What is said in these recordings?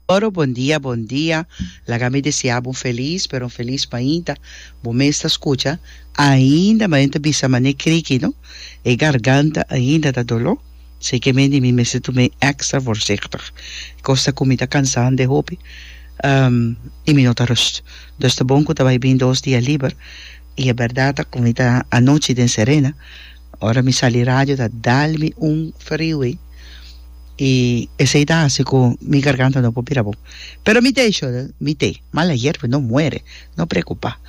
Oro bon dia bon dia laga mi desea bo un felis pero un felis mainta bo mes ta scucha ainda manen ta bisa mane criki no e garganta ainda ta dolo si ke mende mi mester tu me extra voorzichtig cos ta cu mi ta cansande hopi y mi no ta rust dus ta bon cu ta bay bin dos dia liber y e berdad ta cu mi ta anochi den serena Ora mi sali radio ta dal mi un frio ei i esei ta hasi ku mi garganta no por bira bon pero mi te shor mi te mal ayer pues no muere no preocupa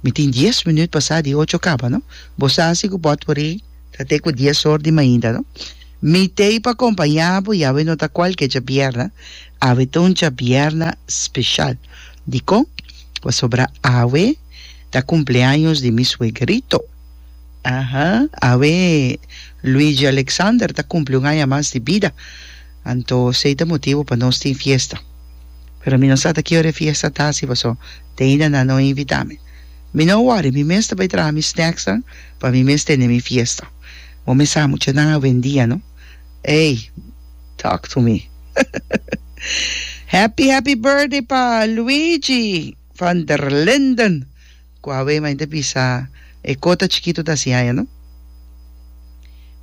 mi tin dies minüt pa sa di ocho kaba no bo sa si ku bo por ri ta te ku dies or di mainta no mi te pa kompañá bo i awe no ta kualke chabierna awe ta un chabierna speshal dikon pasobra awe ta kumpleaños di mi suegerito. Aha, awe Luigi Alexander ta kumpli un aña mas di bida, anto esei ta motibu pa nos tin fiesta. Pero mi no sa ta ki ora e fiesta ta hasi, paso Dana nan no a invitá mi. Mi no a wòri, mi mes ta bai traha mi snèksnan pa mi mes tene mi fiesta. Bo mes sa muchanan a wendia, no? Ey, talk to me. Happy happy birthday pa Luigi van der Linden. Ku a wei mainte bisa e kota chikitu ta hasi aña no.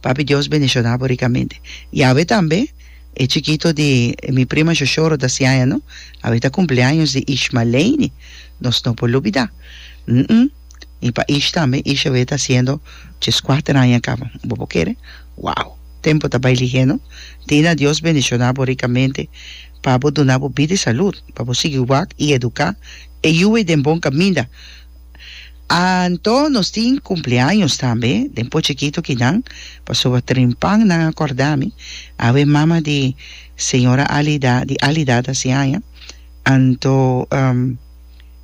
Papi Dios bendishoná bo rikamente. I a wei tambe e chikitu di mi prima Shoshoro ta hasi aña no. A wei ta kumpleaños di Ish Maleini. Nos no por lubidá. Hm i pa Ish tambe Ish a wei ta hasiendo djes kuater aña kaba. Bo por kere? Wow! Tempu ta bai lihé no. Dina Dios bendishoná bo rikamente pa bo duna bo bida i salud pa bo sigui wak i eduká. E yuwe den bon kaminda. Anto nos tin kumpleaños tambe den pochi kito kinan, pasoba trimpan nan a kòrda mi, awe mama di señora Alida di Alida ta si aña, anto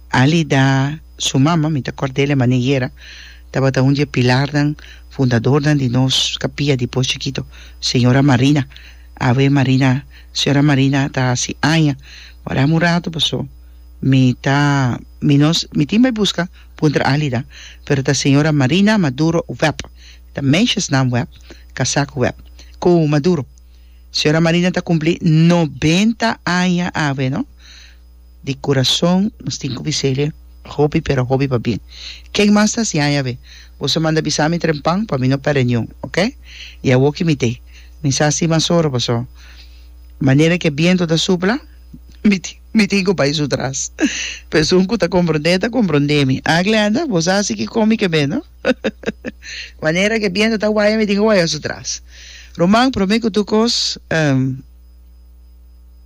Alida su mama mi ta kòrda el e mané yera, tabata un di e pilarnan fundadornan di nos kapia di pochi kito, señora Marina, awe Marina señora Marina ta hasi aña, ora un ratu pasó. Mi ta mi no mi tin bay busca puntra alida pero ta señora Marina Maduro Webb ta meisjesnaam Webb casak Webb cu Maduro señora Marina ta cumpli noventa aña awe no di curazon nos tin cu bisele hopi pero hopi pa bien ken mas ta siaña awe boso a manda bisami trempan pa mi no perde niun ok y awoki mi te mi sa si mas ora paso manera ki e biento ta supla mi tin Mi tin cu bay su tras. Pesun cu ta comprende ta comprende mi. Ah Glenda, bo sa si ki comi ke be no? Manera ke biento ta waya mi tin cu waya su tras. Roman, prome cu tur cos, ehm.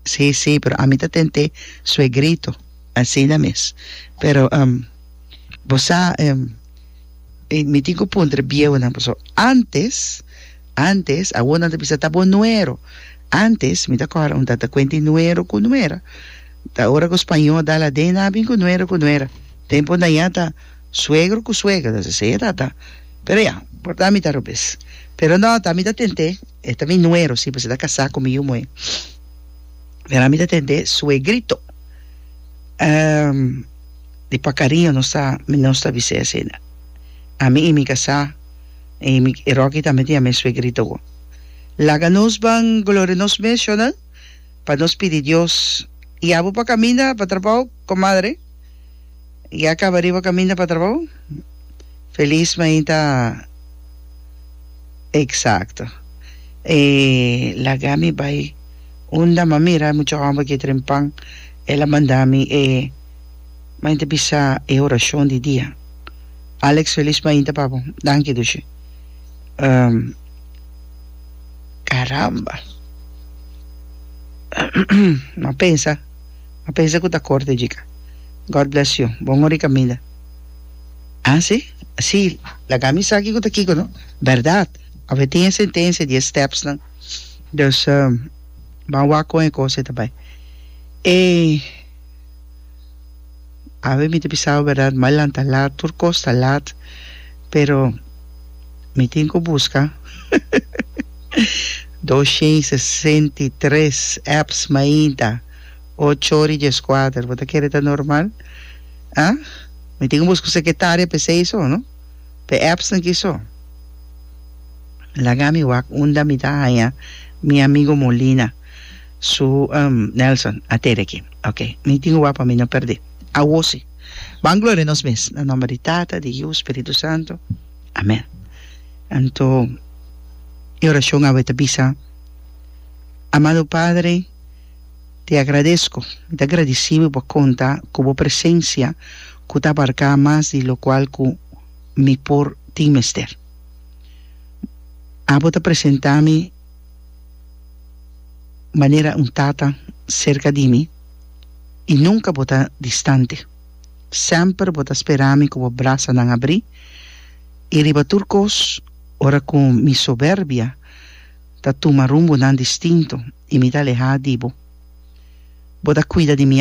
Si, si, pero ami ta tente suegrito. Asina mes. Pero, ehm, bo sa, ehm, mi tin cu puntra bieunan paso antes. Antes, awor nan ta bisa ta bo nuero. Antes, mi ta kòrda un tata kuenta e nuero ku nuera. Ta ora ku spañó dal aden nan a bin ku nuero ku nuera. Tempu nan ya ta suegro ku suegra, ta sesei e tata. Pero ya, por ta mi ta robes. Pero no, ta mi ta tent'é, e ta mi nuero si, pasobra e ta kasá ku mi yu muhé. Pero ami ta tent'é suegrito. Di pa kariño nos ta, nos ta bis'é asina. Ami i mi kasá. I mi e Rocky tambe tin a mes suegrito bo. Laga nos ban gloria nos mes shonan pa nos pidi Dios ya bo pa caminda pa trabao comadre ya caba riba caminda pa trabao feliz mainta exacto e laga mi bai unda mami mira mucho homber ke tren pan ela manda mi e Mainta bisa e horashon di dia. Alex Felis Mainta pa bo. Danki Dushi. Um, caramba! M'a pensa, m'a pensa cu ta corto e chica. God bless you. Bon hora i caminda. Ah, si? Si, laga mi sa kico ta kico, no? Berdad. Awe tin e sentencia di e stepsnan. Dus, um, ban wak con e cos ei ta bay. E. Awe mi ta pisaba berdad mai lanta lat, tur kos ta lat, pero mi tin ku buska dos shen i sesenta i tres apps mainta ocho ora i dies kuater. Bo ta kere ta normal? A mi tin ku buska un sekretaria pa esei so, no? Pa e appsnan ki so. Laga mi wak unda mi ta haña mi amigu Molina. Su, Nelson, a tede aki. Ok. Mi tin wak pa mi no perdé. Awo si. Ban gloria nos mes. Na nomber di Tata, di Yiu, Spiritu Santu. Amén. Anto, e orashon awe ta bisa, Amado Padre, te agradesco. Mi ta gradisí bo pa konta ku bo presensia ku ta abarká mas di lokual ku mi por tin mester. Abo ta presentá mi. manera un tata serka di mi i nunka bo ta distante. Semper bo ta spera mi ku bo brasanan abrí i riba tur kos ora ku mi soberbia ta tuma rumbonan distinto i mi ta alehá di bo, bo ta kuida di mi.